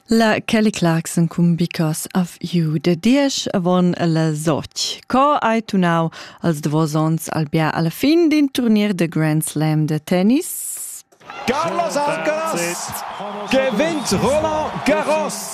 La Kelly Clarkson cun Because of You de diesch avon la Soch. Co hai tunau als davos ons al bia alla fin d'in turnier de Grand Slam de tennis? Carlos Arcos gewinnt Roland Garros!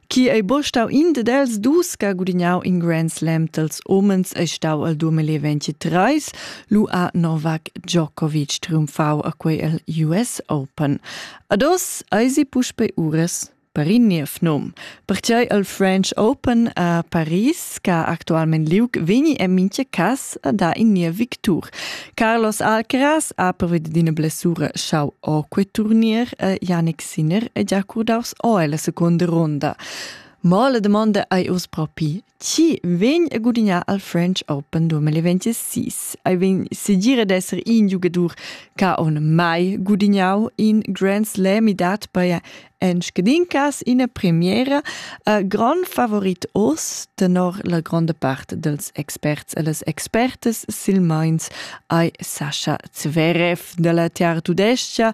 Chi ei bo stau in ded els dus che ha gudignau in Grand Slam dels homens ei stau al 2023, Lua Novak Djokovic triumfau a quei el US Open. Ados eisi puspei ures per in niev nom. Pertgei al French Open a Paris, che ha actualment liug, vegni en minche cas a da in nia victur. Carlos Alcaraz ha previdu d'ina blessura schau o quei turnier e Yannick Sinner è già curdaus o ella seconda ronda. Ma la domanda ei uss propi, chi vegn a gudignar al French Open 2026? Ei vegn segir ad esser in giugadur che on mai gudignau in Grand Slam e dat per en scadincas ina premiera. Uh, gran favorit oss, tenor la gronda part dels experts e les expertes silmeins ei Sascha Zverev della Tiar Tudescia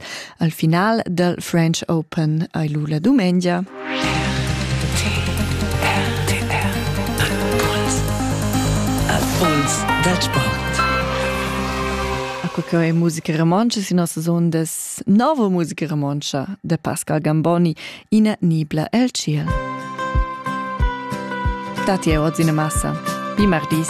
Al final dal French Open hai lu la dumengia. Impuls dal sport. Acqua che è musica romontsch sin nossas ondas, nova musica romontsch da Pascal Gamboni, ina nibla el ciel. Dati è oz in massa. Bi mardis.